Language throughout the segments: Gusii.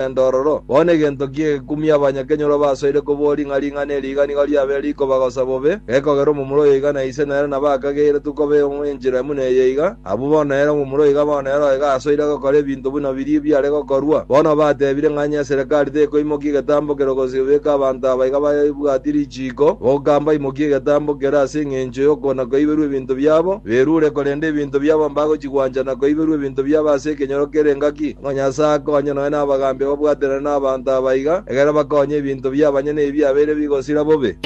Rogendo ororo, bono egento ki egekumia abanyakenyoro basoire koboria ng'a ring'ana eri iga nigo riabeire rikobagosa bobe, gekogera omomura oyo iga na ise nere nabo akageiretwe koba enchera buna eye iga? Abwo bono nere omomura oiga bono nere oiga asoire gokora ebinto buna biria biare gokorwa. Bono batebire ng'a onye eserekari tekoimokia egetambo kero gose gobeka abanto aba iga babwatie richiiko, goka mbaimokie egetambo kero ase engencho y'okona kwaiberwa ebinto biabo, berure korenda ebinto biabo mbagochi Gwancha na koiberwa ebinto biabo ase ekenyoro kere engaki, ng'a Nyasae akonye nonya n'abagaambi ababwaterane n'abanto aba iga, egerero bakonye ebinto bi'abanyene ebi abeire bigosira bobe.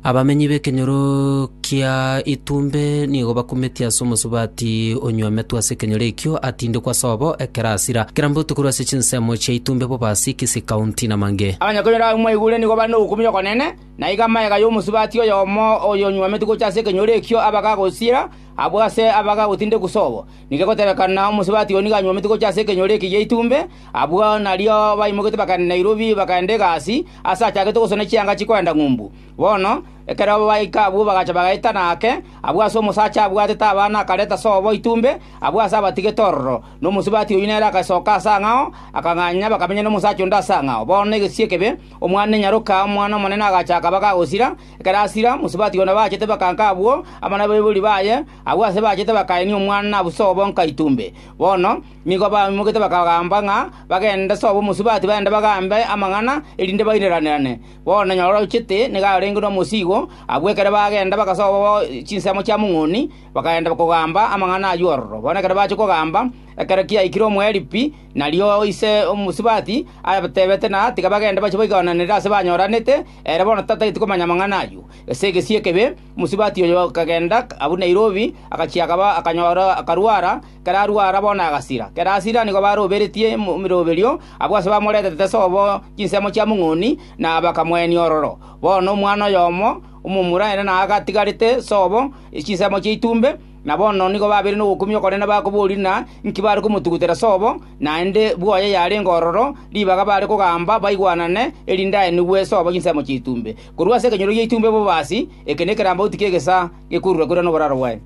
Abamenyi b'ekenyoro kia Itumbe nigo bakumetie ase omosubati onyw'ametwe ase ekenyoro ekio, atindekwe ase obo ekero asira. Kera mbotuko korwa ase chinsemo chia Itumbe bobe ase Kisii County na Mange. Abanyakenyoro abwo mwaigure nigo bare nobokumia okonene, Na iga amagega y'omosubati oyomo oyonyuomete gocha ase ekenyoro ekio abaga agosiira, abwo ase abaga agotinde kusobo. Nigo egotebekana omosubati oyio nigo anyuomete gocha ase ekenyoro eke gi'eitumbe, abwo nario baimogete bagaenda Nairobi, bagaenda egasi, aase achagete gosona chianga chikoenda ng'umbu. Bono, ekero baika abwo bagacha bagaetana ake, abwo ase omosacha abwatete abana akareta sobo eitumbe, abwo ase abatigete ororo, na omosubati oyio nere agasoka ase ang'ao, akang'anya bakamenya nomosacha onde ase ang'ao. Bono negesio ekebe, Omwana nyaroka omwana omonene agacha akaba kagosira. Ekero asira, mosubati one bachete bakanka abwo amo nabaibori baye, agwo aase bachete bakaenia omwana na buso bonka itumbe. Bono nigo baimogete bakagamba ng'a bagende sobo mosubati baende bagambe amang'ana, erinde baireranerane. Bono nyora ochete nigo arenge nomosiigo, abwo ekero bagenda bagasoa bo chinsemo chia mong'oni, bakagenda kogamba amang'ana ayio ororo. Bono ekero bachia kogamba, ekero kiaikire omoerio pi, Nario ise omosubati abatebete na tiga bagende bachie baigananere aase banyoranete, ere bono tatageti komanya amang'ana ayio. Ase egesio ekebe, omosubati oyo akagenda abua Nairobi, agachia akaba akanyora akarwara, ekero arwara bono agasira. Ekero asira nigo baroberetie emiroberio abwo ase bamoreterete ase obo chinsemo chia mong'oni, na bakamoenia ororo. Bono omwana oyomo omomura ere naye agatigarete sobo chinsemo chia itumbe, Na bono nigo babeire nogokumia okonene bakoboria ng'a inki bare komotugutera sobo, naende bwoye yarenge ororo, ribaga bare kogamba baigwanane, erinde aenigwe sobo chinsemo chi'etumbe. Korwa ase ekenyoro gi'etumbe bobasi, eke nekerambauti ki'egesaa gekurure-kurure noboraro bwaye.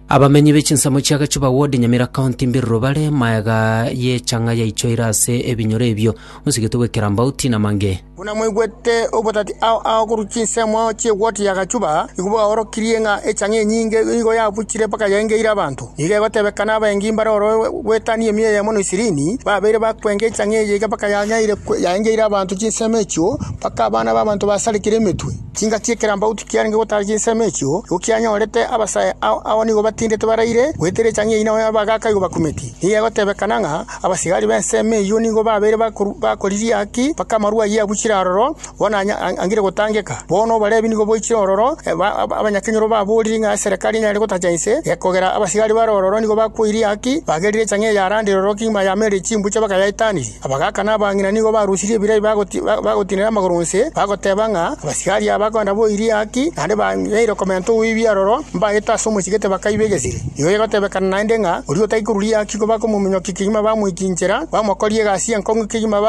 Abamenyi be chinsemo chia Gachuba Ward, Nyamira County, Mbiruru bare maega y'echang'a yaichoire ase ebinyoro ebio, osigetwe gwe Kirambauti na Mange. Buna mwaigwete obotati ao ao korwa chinsemo chi'eward ya Gachuba, igo bwaorokirie ng'a echang'a enyinge nigo yabuchire mpaka yaengeire abanto. Nigo egotebekana abaengi mbare oro gwetania emiya eyemo na ishirini, babeire bakwenga echang'a eye iga mpaka yanyaire yaengeire abanto chinsemo echio, mpaka abana b'abanto basarekire emetwe. Chinka chi'ekerambauti kiarenge gotaara chinsemo echio, nigo kianyorete abasae ao agwo nigo batindete baraire goetera echang'ia eyio nao y'abagaaka igo bakumeti. Nigo egotebekana ng'a abasigari b'ensemo eyio nigo babeire bakoriria ki mpaka amarua ayio abuchire aroro bono angire gotangeka. Bono Obarebi nigo boichire ororo, abanyakenyoro baboorire ng'a eserekari enyare gotacha inse, gekogera abasigari bare ororo nigo bakwoiria ki, bagerire echang'ia ya Landi roro kegima yameereire chimbucha bakayaitaneria. Abagaaka na abang'ina nigo barusirie ebirai bagotinera amagoro onsi, bagoteba ng'a abasigari aba bakoenda boirie haki, naende bang'eire okomenta oboibi aroro, mbaete ase omochie tibakaiba egesire. Igo egotebekana naende ng'a oria otari koruria haki nigo bakomominyokia kegima bamoikinchera, bamokorie egasi y'enkong'u kegima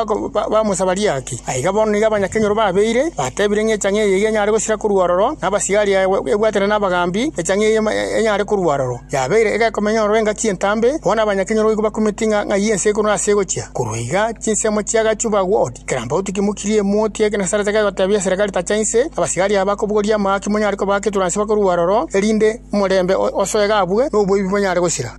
bamosabarie haki. Aiga bono nigo abanyakenyoro babeire, batebire ng'a echang'e eye nigo enyare gosira korwa aroro, na abasigari aya ebwatana nabagaambi, echang'e eye enyare korwa aroro. Yabeire egekomenyororo engaki entambe, bono abanyakenyoro goika bakumeti ng'a ng'ai ense ekoro nase egochia. Korwa iga chinsemo chia agachu bagwa odi, kerambauti kimokirie emoti ya ekenasarete kegotebia eserekari tacha inse, abasigari aba kobogoria amaa ki monyare kobaa keturansi bakorwa aroro, erinde omorembe osoe iga abwe, na oboibi bonyare gosira.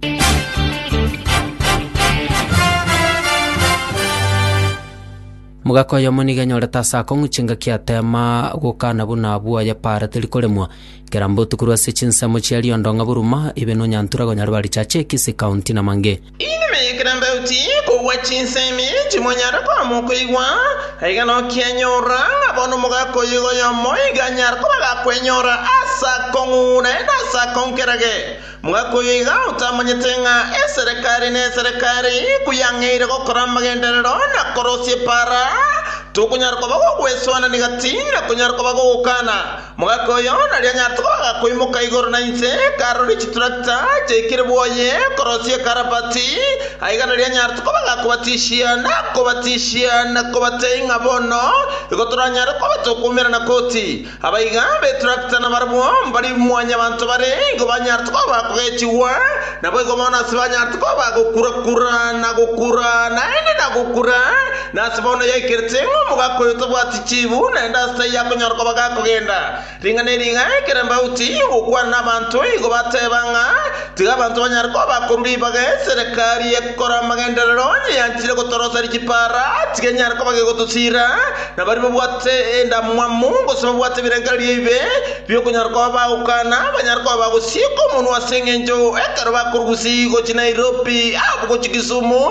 Mogaka oyomo nigo enyorete ase akong'u chingaki ateema gokana buna abwo ayapaarete rikoremwa, Kera mbotu korwa ase chinsemo chia riondo ng'a boruma ibe nonyantura konyare barichache ekisi, kaunti, na mange. Inwe ekero mbauti kogwa chinsemi timonyare koama okoigwa, aiga nokianyorora ng'a bono omogaka oyoiga oyomo iga anyare koba agakwenyora ase akong'ure na ase akonkerage. Omogaka oyoiga otamanyete ng'a eserekari ne eserekari iko yang'eire gokora amagenderero na korosia epaara, tokonyara koba gogwesoanania gati na konyara koba gogokana. Mogaka oyo naria nyatogo agakoimoka igoro na inse, akaroria chiturakita chiaikire bwoye korosia ekarabati, aiga naria nyatogo bagakobatishia na kobatishia na kobatei ng'a bono igo toranyare koba tokoumera na koti. Abaiga b'eturakita nabarabwo mbari mwanyabanto bare, igo banyarete koba kogechigwa, naboigo bono ase banyarete koba gokura-kura na gokura, naende na gokura, Nase bono yaikerete ng'a omogaka oyo tabwati chiibu, naende ase taiyo akonyara koba gakogenda. Ring'a ne ring'a ekero embauti igokwana nabanto igo bateba ng'a tiga abanto banyare koba bakorwa ribaga eserekari egokora amagenderero yeanchire gotoroseria chipaara, tiga enyare koba gegotosiira, na baria babwate endamwamu gose babwate ebirengererio ebibe bi'okonyara koba bagokana banyare koba bagosieka omonwa ase engencho ekero bakorusia gochia Nairobi abwo gochia Kisumu,